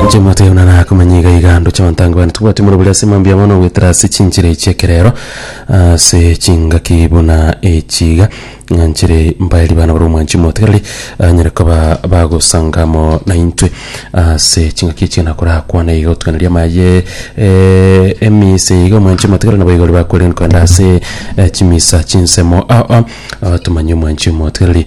Nche moteo na nakomanya iga iga ando chabantango bane tubwati moro buri ase mambia mono gwetera ase chinchera echi ekerero ase chingaki buna echiga ng'a nchire mbaeri bana bare omwanchi motegereri anyare koba bagosanga amo naintwe ase chingaki echi nakorakwane iga otuganeria amaye emisa iga omwanchi motegereri nabo iga ore bakwerigereria kogenda ase chimisa chinsemo ao ao tumanye omwanchi omotegereri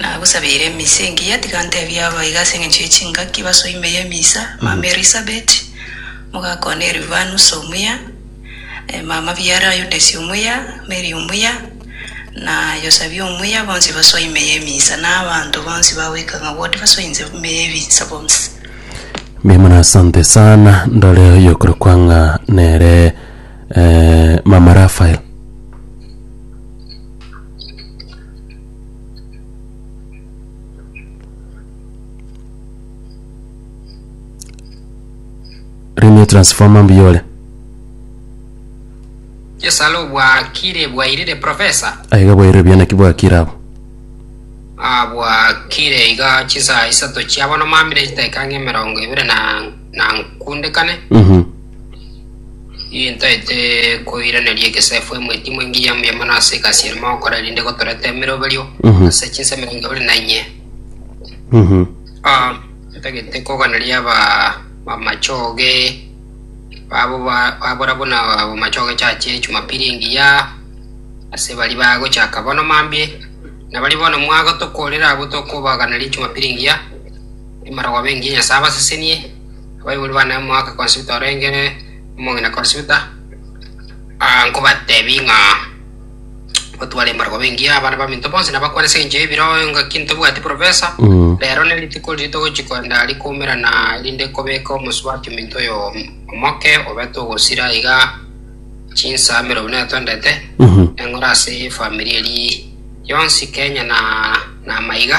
Nagosabeire emisa engiya, tiga ntebie aba iga ase engencho ye chingaki basoe ime y'emisa, mama Elisabeti, mogaka one Elivanus omuya, eh, mama biara Yudesi omuya, Meri omuya, na Yosabia omuya, bonsi basoe ime y'emisa, na abanto bonsi bagoika ng'a bwoti basoe inse ime y'ebisa bonsi. Mimura asante sana ndore oyokorokwa ng'a nere eh, mama Rafael Renew transformer mbuya ore Yesalo bwakire bwairire profesa aiga bwairire buya naki bwakire abo ah, bwakire iga chisaa isato chiabono mamire chitaika ng'emerongo ibere na na nkundekane Mhm. Nintaete koiraneria egesaifo emweti imwe engiya mbuya mono ase egasi ere mogokora erinde gotoreta emeroberio Mhm. ase chinsa emerongo ebere na inye. Mhm. Ah, ntagete koganeria aba bamachoge babo ba- babora buna bamachoge chache chumapili engiya ase bari bagochaka bono mambie na bari bono mwagotokorera abwo tokobaganeria chumapili engiya emarogobia engiya nyasae abasesenie Abaibori bane omwaka konsuta orenge omong'ina konsuta, nkobatebie ng'a gotware embargwa bengiya abana baminto bonsi nabakwane ase engencho y'ebiro engaki ntobwati profesa. Rero nerituko riria togochi kogenda rikoumerana erinde kobeka omosubati ominto oyo omoke obete ogosira iga chinsaa emerongo ina natwendete eng'ora ase efamiri eri yonsi Kenya na na amaiga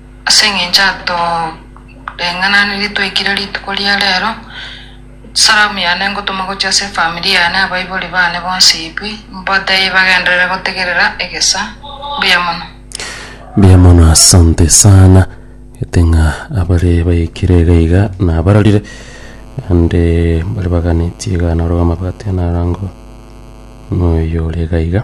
Ase engencho atoreng'ananirie twaikire rituko ria rero, salamu yane ngotoma gochia ase efamiri yane abaibori bane bonsi Ib, mbatebie bagenderere gotegerera egesa. Mbuya mono. Mbuya mono asante sana gete ng'a abare baikire iga iga nabarorire ande mbare baganeti iga naro amabati anarangwa noyo ore iga iga.